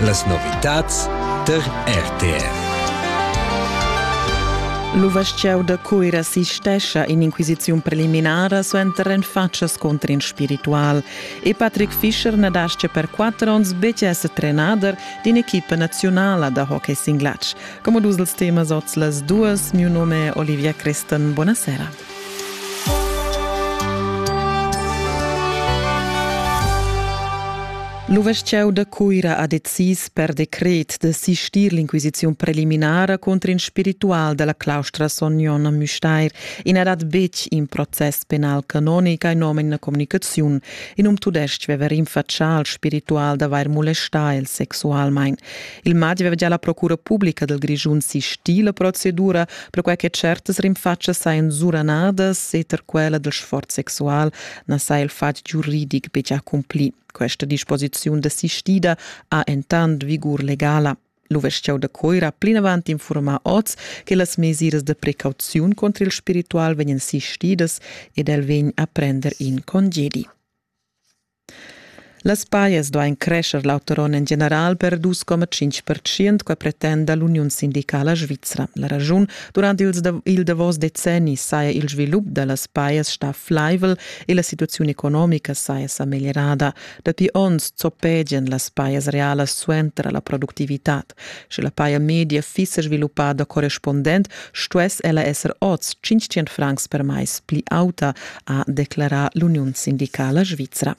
Las novitads tar RTR. L'uvestgieu da Cuira assistescha in'inquisiziun preliminara suenter renfatschas contro in spiritual e Patrick Fischer na dascha per quatter onns betg esser trenader d'in'equipa nazionala da hockey singlatsch. Come dus els temas oz las duas, miu nome è Olivia Crestan. Buonasera. L'uvestgieu da Cuira ha decis per decret da sistir l'inquisiziun preliminara contro in spiritual della claustra Sognon a Müstair e n'ha dat betg in process penal canonic in nom in communicaziun. In um tudestg aveva rinfaccià al spiritual d'avair molestà el sexualmain. Il madi aveva già la procura pubblica del Grischun sistì la procedura perquai che certas rinfatschas sajan suranadas e tar quella del sforz sexual na saja il fatg giuridic betg accumpli. Questa disposiziun desistida ha entant vigur legala. L'uvesciau da Coira plinavant informa oz che las mesiras de precauziun contro il spiritual vegnan sistidas ed el vegn a prender in congedi. Las pajas duain crescher l'auter onn en general per dus coma tschintg pertschient, quai pretenda l'uniun sindicala svizra. La raschun durant ils dav il davos decenni saja il svilup da las pajas stà flaivel e la situaziun economica saja sa meglierada. Dapi onns zoppegian las pajas realas suenter la productivitad. Sche la paja media fiss sviluppada correspundent, stuess ella esser oz 500 francs per mais pli auta, ha declarà l'uniun sindicala svizra.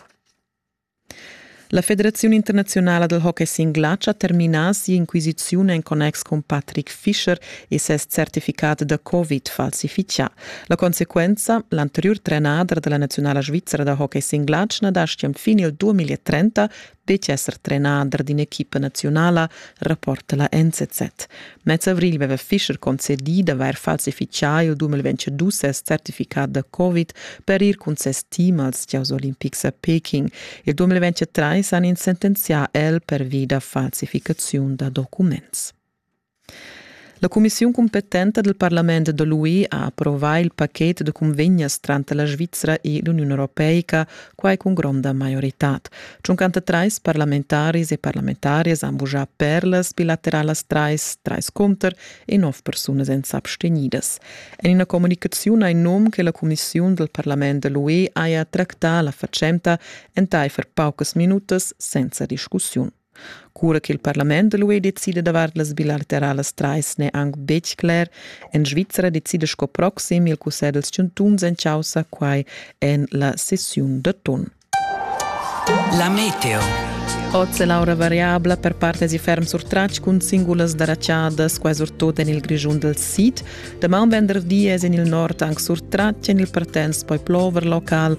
La Federaziun internaziunala del hockey singlatsch ha terminà si'inquisiziun en connex cun Patrick Fischer e ses certificat da Covid falsifichà. La consequenza, l'anteriur trenader della nazionala svizzera da hockey singlatsch na dastga fin il 2030 Betg esser trenader d'in'equipa naziunala rapporta la NZZ. Mez avrigl veva Fischer concedì d'avair falsifichà il 2022 ses certificat da Covid per ir cun ses team als Gieus olimpics a Peking. Il 2023 han ins sentenzià el pervi da falsificaziun da documents. La cumissiun cumpetenta dal parlament da l'UE ha approvà il pachet da cunvegnas tranter la Svizra e l'Uniun europeica, quai cun gronda maioritad. 53 parlamentaris e parlamentarias han vuschà perlas bilateralas trais, trais conter e nov persunas èn s'abstegnidas. En ina communicaziun ha in num che la cumissiun dal parlament da l'UE haja tractà la fatschenta entaifer paucas minutas senza discussiun. Cura ch'il parlament da l'UE decida davart las bilateralas trais n'è anc betg cler. En Svizra decida sco proxim il cussegl dals chantuns en chaussa quai en la sessiun d'atun. La meteo. Oz è l'aura variabla per partes e ferm sur tratg cun singulas daraciadas, quai surtut en il Grischun dal sid. Damaun venderdi è en il nord anc sur tratg, en il Partenz poi plover local,